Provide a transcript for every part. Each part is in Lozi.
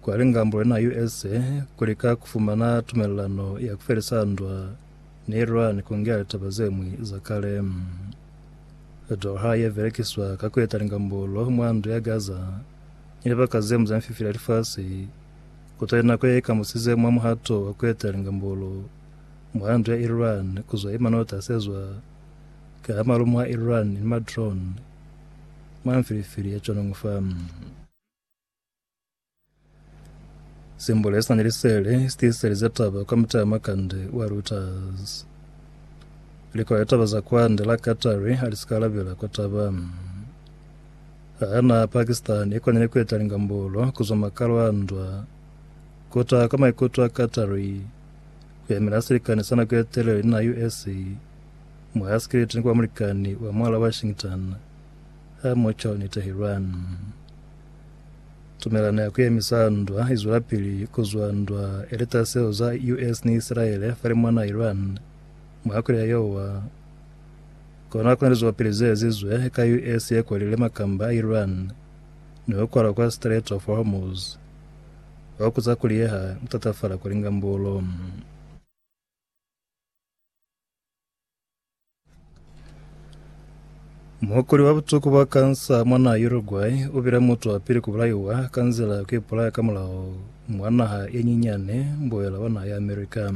Kwa lingambo lena usa kulika kufumana tumelelano ya kufelisa ndwa ni Iran kungea litaba zemwi za kale. Doha yebelekiswa ka kueta lingambolo mwa ndu ya Gaza ni libaka zemwi za mififila ya lifasi kutali nako yeikambusize mwa muhato wa kueta lingambolo mwa ndu ya Iran kuzwa imanota asezwa ka malumo a Iran ni madrone mwa mifilifili ya Chonongfa. Simbole sina ni lisele sitiiselize taba kwa mutaya makande wa Reuters. Likolo ya taba za kwande la Qatari halisikalabela kwa taba hana Pakistan ikonile kueta lingambolo kuzwa makalo a ndwa kota kwa maikuto a Qatari kuyamela silikani sa nako ya telele na US mwa sikiliti ni kwa mulikani wa mwala Washington ha mucho ni Tehran. Tumelano ya kuyemisa ndwa izwelapili kuzwa ndwa eleta seo za US ni Isilaele fale mwana Iran mwa kuli ya yowa. Kona kuna lizwapili ze ezizwe ka US ye kwalile makamba a Iran ni ho kwala kwa Strait of Hormuz wa kuza kuli ye ha tatafala kwa lingambulo. Muhokoli wa butuku bwa kansa mwa naha Uruguay u bile mutu wa pili ku bulaiwa ka nzila ya ku ipulaya ka mulaho mwa naha ye nyinyani mbuela wa naha ya America.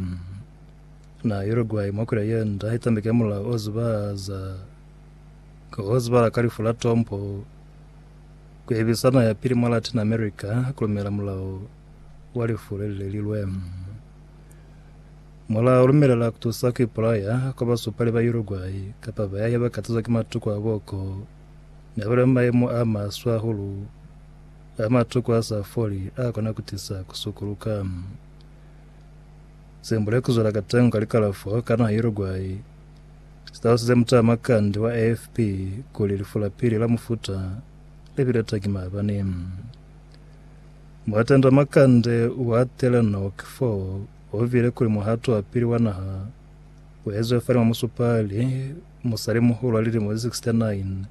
Naha ya Uruguay mwa kule ye nda i tambeke mulao o zubahaza o zubahala ka lifu la tompo ku ebisa naha ya pili mwa Latin America ku lumela mulao wa lifu le le lilwe. Mula lumelela kutusa kuipulaya kwa basupali ba Uruguay kapa bayahi bakatazwa ki matuku a boko nabali mu mayemo a maswe ahulu a matuku asa foli akona kutisa kusukuluka. Sembule kuzwela katengo ka likalafo ka naha Uruguay sitalosize mutaamakandi wa AFP kuli lifu la pili la mufuta libile tangi maabani. Muatenda makande wa Telenor Kfo Ho vile kuli muhato wa pili wa naha u ezwe fani mwa musupali musali-muhulu wa lilimo ze 69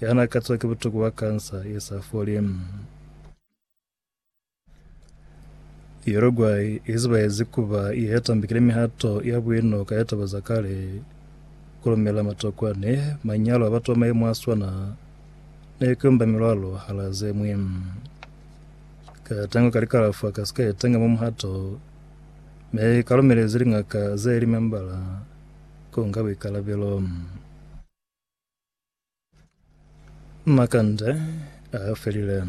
ya na katiwa ki butuku bwa kansa ye sa foli. Uruguay i zibaezi ku ba ye tambikile mihato ya buino ka ya taba za kale, ku lumela matokwane, manyalo a batu ba mayemo a swana, ni ku umba milwalo hala ze ñwi. Ka tango ka likalafwa ka si ka etanga mwa muhato, me ka lumelezi liñaka ze li membala ku nga buikalabelo. Makande a felile.